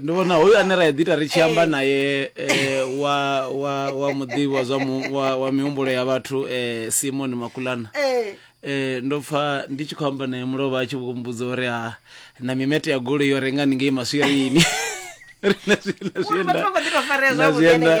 ndi vhona hoyu ane ra ḓita ri tshi amba eh. naye um wa wa wa muḓivhi wa zwa wa mihumbulo ya vhathu um simon makulana um ndo pfa ndi tshi khou amba naye mulovha a tshi vhumbudza uri ha na mimete ya goloi yo renga ni ngei maswirini na zwienda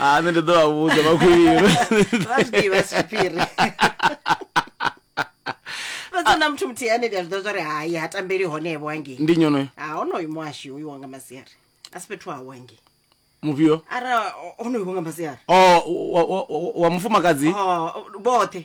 ah nṋe ndi ḓo vha vhudza makhulilo vha zwi ḓivha si tshiphiri fhedza na muthu muthihi ane ndi a zwi ḓivha zwa ri hai ha tambeli honevho hangei ndi nyonoyo ha honoyo muhashi uyu wanga masiari a si fhethu hawe hangei mufhio ara honoyo wanga masiari o wa- wa- wa- wa mufumakadzi Oh, vhoṱhe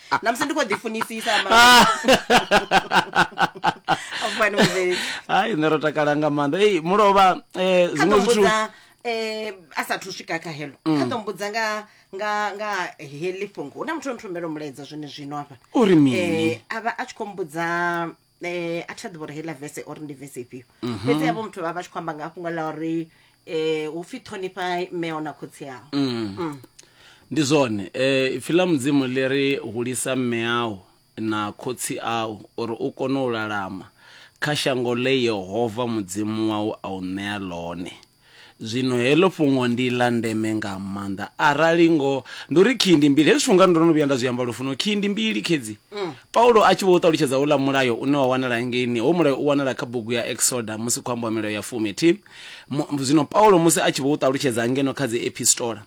na musi ndi khou ḓifunisisa afani muvheli hai nṋe ro takala nga maanḓa ei mulovha um kha ḓo zwiṅwe zwithu mbudza eh, a sathu swika kha helo kha ḓo mbudza nga nga nga heḽi fhungo hu na muthu o nthumbela mulaedza zwone zwino hafha Uri mini? Eh, a vha a tshi khou mbudza eh a thi a ḓivha uri heiḽa vese uri ndi vese ifhio Mhm. fhedzi havho muthu vha vha tshi khou amba nga fhungo ḽa uri um hu pfi ṱhonifha mmeo na khotsi ao Mm. ndi zwone eh ipfi ḽa mudzimu ḽi ri hulisa mme au na khotsi au uri u kone u lalama kha shango ḽe yehova mudzimu wau a u ṋea ḽone Zwino heḽo fhungo ndi ḽa ndeme nga maanḓa. Arali ngoho ndi uri khiyi ndi mbili, hezwi zwithu nga ndo no vhuya nda zwi amba lufuno, khiyi ndi mbili khedzi. Paulo a tshi vho u ṱalutshedza houḽa mulayo une wa wanala ngeini, hoyu mulayo u wanala kha bugu ya Eksoda musi khou ambiwa milayo ya fumi thi. Mu, zwino Paulo musi a tshi vho u ṱalutshedza ngeno kha dzi epistola,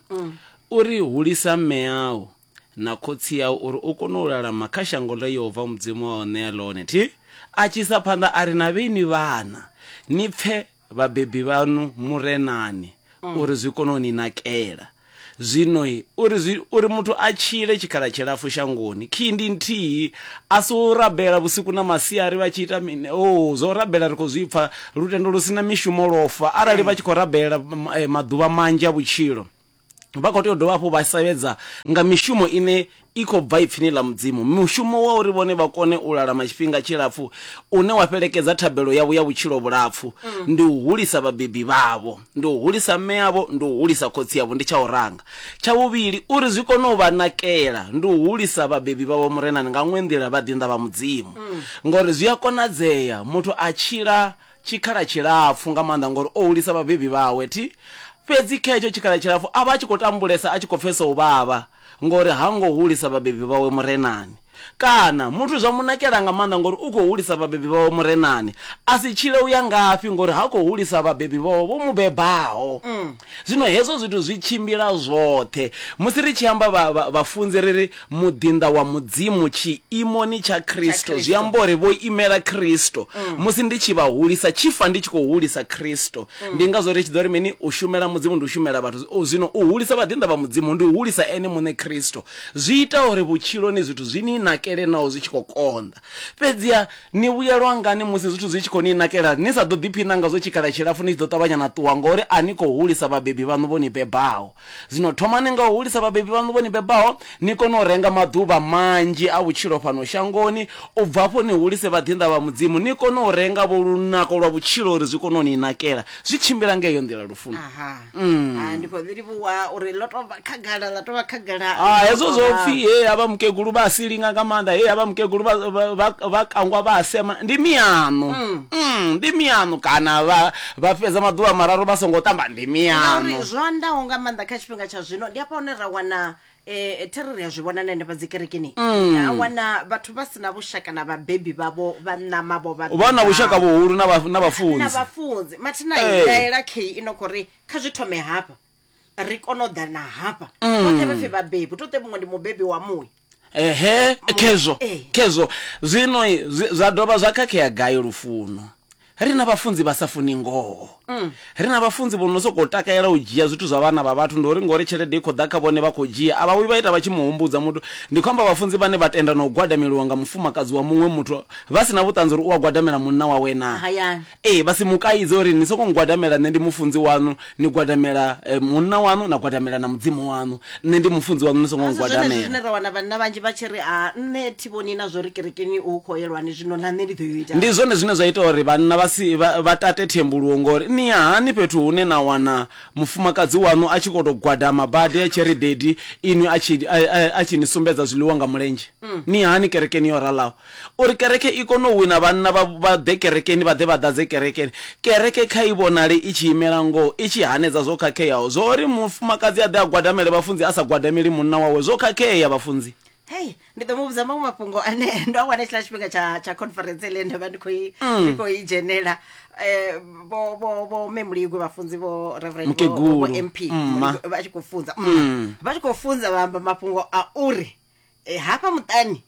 u ri, Hulisa mme au na khotsi au uri u kone u lalama kha shango ḽe Yehova Mudzimu wau a u ṋea ḽone thi. A tshi isa phanḓa a ri, Na vheni vhana, ni pfe, Vhabebi vhaṋu mu re nani uri zwi kone u ni nakela. Zwino-i, uri zwi, uri muthu a tshile tshikhala tshilapfu shangoni, khiyi ndi nthihi, a si u rabela vhusiku na masiari vha tshi ita mini? O, zwa u rabela ri khou zwi pfa, lutendo lu si na mishumo lwo fa, arali vha tshi khou rabela maḓuvha manzhi a vhutshilo. Vha khou tea u dovha hafhu vha sevhedza nga mishumo ine i khou bva Ipfini ḽa Mudzimu, mushumo wa uri vhone vha kone u lalama tshifhinga tshilapfu une wa fhelekedza thabelo yavho ya vhutshilo vhulapfu. Ndi u hulisa vhabebi vhavho, ndi u hulisa mme avho, ndi u hulisa khotsi avho, ndi tsha u ranga. Tsha vhuvhili, uri zwi kone u vha nakela, ndi u hulisa vhabebi vhavho murenani nga ṅwe nḓila vha ḓinḓa vha Mudzimu. Ngauri zwi a konadzea muthu a tshila tshikhala tshilapfu nga maanḓa ngori o hulisa vhabebi vhawe thi. Fhedzi kha hetsho tshikhala tshilapfu a vha a tshi khou tambulesa a tshi khou pfesa u vhavha ngori ha ngo hulisa vhabebi vhawe Murenani. Kana, muthu zwa mu nakela nga maanḓa ngori u khou hulisa vhabebi vhawe Murenani, a si tshile u ya ngafhi ngori ha khou hulisa vhabebi vhawe vho mu bebaho. Zwino hezwo zwithu zwi tshimbila zwoṱhe. Musi ri tshi amba vha, vha, vhafunzi, ri ri, Muḓinḓa wa Mudzimu tshiimoni tsha Kristo, zwi amba uri vho imela Kristo. Musi ndi tshi vha hulisa, tshi fa ndi tshi khou hulisa Kristo. Ndi ngazwo ri tshi ḓo ri mini? U shumela Mudzimu ndi u shumela vhathu. O, zwino u hulisa vhaḓinḓa vha Mudzimu ndi u hulisa Ene Muṋe Kristo. Zwi ita uri vhutshiloni zwithu zwi ni nakele naho zwi tshi khou konḓa. Fhedziha ni vhuyelwa ngani musi zwithu zwi tshi khou ni nakela? Ni sa ḓo ḓipfi nanga zwa tshikhala tshilapfu ni tshi ḓo ṱavhanya na ṱuwa ngauri a ni khou hulisa vhabebi vhaṋu vho ni bebaho. Zwino thomani nga u hulisa vhabebi vhaṋu vho ni bebaho ni kone u renga maḓuvha manzhi a vhutshilo fhano shangoni, u bva afho ni hulise vhaḓinḓa vha Mudzimu, ni kone u renga-vho lunako lwa vhutshilo uri zwi kone u ni nakela. Zwi tshimbila nga heyo nḓila lufuno. Mm. Ah, ndi khou ḓi livhuwa uri ḽo tou vha khagala ḽa tou vha khagala Ah, hezwo zwo pfi he havha mukegulu vha a silinga nga maanḓa he havha mukegulu vha- vha- vha- vha kangwa vha a sema ndi miano Mm, ndi miano kana vha vha fhedza maḓuvha mararu vha songo tamba ndi miano ngauri zwo andaho nga maanḓa kha tshifhinga tsha zwino ndi afha hune ra wana Eh, thero ri a zwi vhona na henefha dzi kerekeni Mm. a wana vhathu vha si na vhushaka na vhabebi vhavho vha ṋama vho vha vha na vhushaka bebaho. vhuhulu na vha- na na vhafunzi vhafunzi mathina Eh. ndaela key ino khou ri kha zwi thome hafha ri kone u ḓana hafha Mm. vhoṱhe vha pfi vhabebi to te muṅwe ndi mubebi wa muya ehe khezwo Eh. khezwo zwino zwi- zwa dovha zwa khakhea gai lufuno Ri na vhafunzi vha sa funi ngoho. Ri na vhafunzi vho no sokou takalela u dzhia zwithu zwa vhana vha vhathu. Ndi uri ngauri tshelede i khou ḓa kha vhone vha khou dzhia. A vha vhuyi vha ita vha tshi mu humbudza muthu. Ndi khou amba vhafunzi vhane vha tenda na u gwadameliwa nga mufumakadzi wa muṅwe muthu vha si na vhuṱanzi uri u a gwadamela munna wawe naa? Hayani. Ee, vha si mu kaidze uri ni sokou ngwadamela nṋe ndi mufunzi waṋu. ni gwadamela eh, munna waṋu na gwadamela na mudzimu waṋu nṋe ndi mufunzi waṋu ni songo Asi zwenezwi ngwadamela zwine ra wana vhanna vhanzhi vha tshi ri a nṋe thi vhoni na zwo ri kerekeni u khou yelwani zwino na nṋe ndi ḓo yo ita ndi zwone zwine zwa ita uri vhanna vha si vha vha tate thembuluwo ngori ni ya hani fhethu hune na wana mufumakadzi waṋu a tshi khou tou gwadama badi a tshi ri dedi inwi a tshi a- a- a tshi ni sumbedza zwiḽiwa nga mulenzhe ni ya hani kerekeni yo ralaho Uri kereke i kone u wina vhanna vha vha ḓe kerekeni, vha ḓe vha ḓadze kerekeni, kereke kha i vhonale i tshi imela ngoho, i tshi hanedza zwo khakheaho. Zwa uri mufumakadzi a ḓe a gwadamele vhafunzi a sa gwadameli munna wawe zwo khakhea, vhafunzi. Hei, ndi ḓo mu vhudza maṅwe mafhungo ane ndo a wana hetshiḽa tshifhinga tsha tsha conference ine nda vha ndi khou i ndi khou i dzhenela um vho vho vho mme muligwe vhafunzi vho reverend vho- vho vho Mukegulu, mp mma. Muligwe, vha tshi khou funza mma. vha tshi khou funza vha amba mafhungo a uri eh, hafha muṱani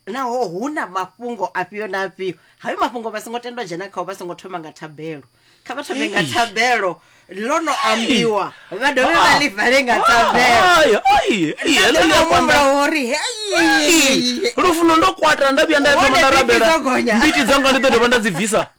naho hu na mafhungo afhio na afhio hayo mafhungo vha songo tendwa dzhena khao vha songo thoma nga thabelo kha vha thome nga Eish. thabelo ḽo no ambiwa vha dovhe vha Ah. ḽi vale nga thabelo Ai, ai, ai, heḽo ḽi a kwanda. mumbula uri Ai, lufuno ndo kwata nda vhuya nda thoma Hone nda mbiti rabela dzo gonya. mbiti dzanga ndi ḓo dovha nda dzi bvisa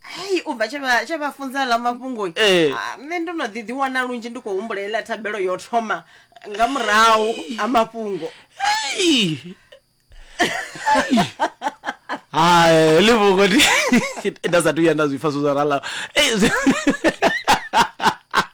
hei u bva tshe vha- tshe vha funza ḽa mafhungoni Eh. Ah, nṋe ndo no ḓi ḓiwana lunzhi ndi khou humbula heiḽa thabelo yo thoma nga murahu ha mafhungo Hey! Hey! Hai, ḽi vhungo ndi nda sathu vhuya nda zwi pfa zwo zwa rala. Ei, zwi-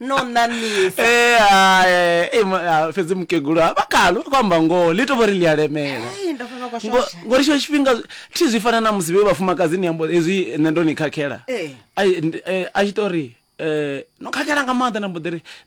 no ṋaṋisa Eh, ah, eh, eh, ma- ah, fhedzi mukegulu ha vha kalo vha khou amba ngoho ḽi to vho ri ḽi a lemela Ei, ndo pfa vha khou Ngo- shosha. ngori tshiṅwe tshifhinga thi zwi fana na musi vhe vhafumakadzi ni ambo hezwi nṋe ndo ni khakhela Eh. Ai, ndi- eh, a tshi to ri eh, no khakhela nga maanḓa na mbo ḓi ri